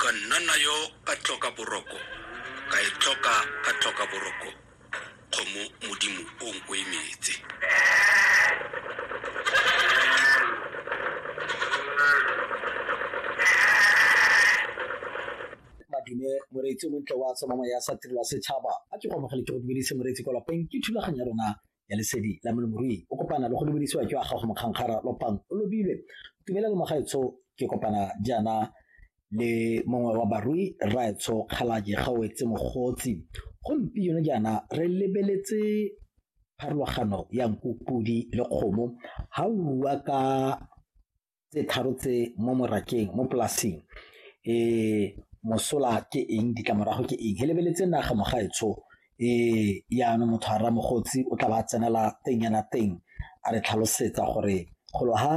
Ka nna nayo ka tlhoka boroko, ka e tlhoka ka tlhoka boroko, kgomo modimo o nkoimetse. madume moreetsi o montle wa tsomamo ya sa tirelwa setšhaba a ke go amogele ke go dumedise moreetsi kwa lapeng ke thulaganyo ya rona ya lesedi la molemirui o kopana le go lebedisiwa ke wa gago mokgankgara lopang o lobile tumela le mogaetsho ke kopana jaana le mongwe wa barui rraetsho kgalaje gaoetse mogotsi gompieno jaana re lebeletse pharologano ya nku podi le kgomo ga o bua ka tse tharo tse mo morakeng mo polasing um mosola ke eng ditlamorago ke eng he lebeletse naga mogaetsho um yaanong motho a ramogotsi o tla ba tsenela teng yana teng a re tlhalosetsa gore golo ha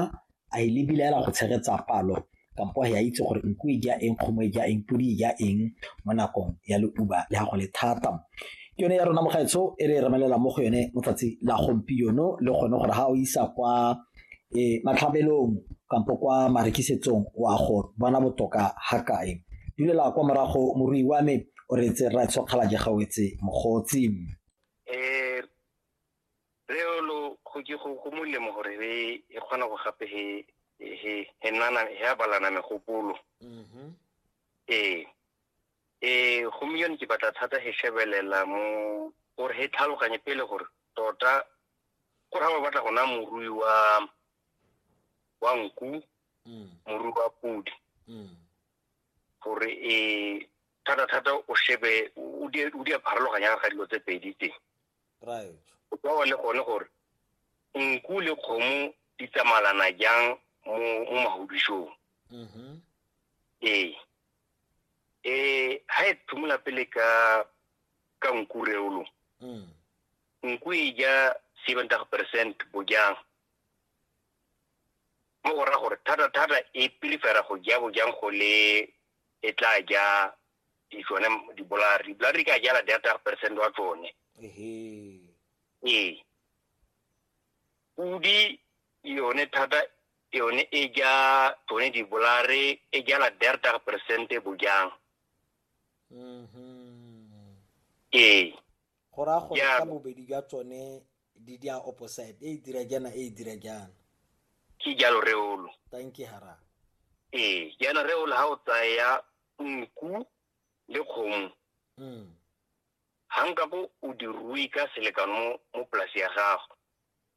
a e lebile ela go tshegetsa palo kampo ya itse gore nku e ja eng kgomo e ja eng podi e ja eng mo nakong ya leuba le gago le thata ke yone ya rona mogaetsho e re e remelela mo go yone motsatsi la gompieno le gone gore ga o isa kwa e matlhabelong kampo kwa marekisetsong wa go bona botoka ga kae dulela kwa morago morui wa me o re tse ra tshokgala je gawetse mogotsi eh reolo go ke go go molemo gore re e kgona go gape he he he nana he abalana megopolo mm-hmm. eh eh go miyone ke batla thata he shebelela mo gore he tlhaloganye pele gore tota go raya o batla go naya morui wa wa nku mm. morui wa podi mm. gore e thata-thata o shebe o di a pharologanyang ga dilo tse pedi tse o tsawa le gone gore nku le kgomo di tsamalana jang mo magodisong mm-hmm. ee um ga e thumula pele ka ka nku reolo mm. N kwi ja 70 percent bojang. Mo go ra gore thata-thata e pilifera go ja bojang go le e tla ja di tsone dibolari. Dibolari ka jala data percent wa tsone. Ee. Pudi yone thata yone e ja tsone dibolare e jala data percent bojang. Mm-hmm. Ee. go raya gore ka bobedi jwa tsone di di a opposite e e dira jaana e e dira jaana ke jalo reolo thank you hara ee jaana reolo ga o tsaya nku le kgomo mm. ga nka bo o dirui ka selekano mo polasi ya gago